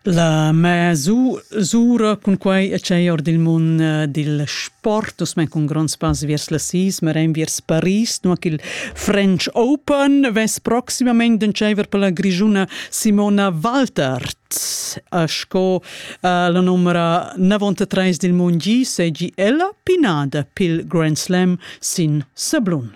La mez'u sura cun quai e tschei or dil mund dil sport, uss mein cun gronds pass viers la sis, marein viers Paris, nua ch'il French Open vess proximamein d'entscheiver per la grischuna Simona Waltert. Sco la numera 93 dil mund gi, seigi ella pinada pil Grand Slam sin sablun.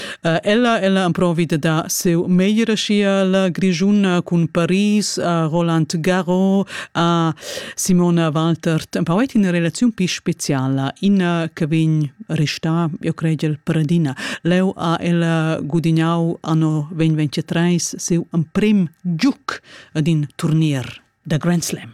Uh, ella, ella amprovi de dar seu meglio sia grigiuna cun Paris, a Roland Garros, a Simona Walter. Tempo è in relazione più speciale, ina che vegn resta, io credo, il paradina. Leo a ella gudignau anno 2023 seu un prim giuc ad in turnier da Grand Slam.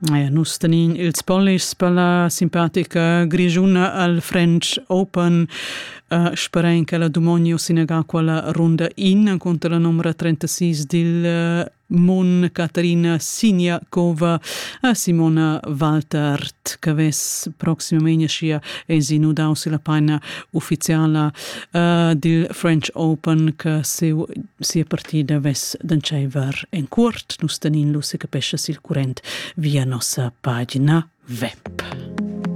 Ja, nus tenin ils polis per la simpatica grigiuna al French Open. Uh, sperain che la Dumonio sinega quella runda in contro la numera 36 dil uh, Mon Caterina Sinjakova a Simona Waltert, che ves proximamente sia esinu dau la paina ufficiala uh, dil French Open che seu sia partida vess d'entscheiver en cuort. Nus tenin lu secapescha sil current via nossa pagina web.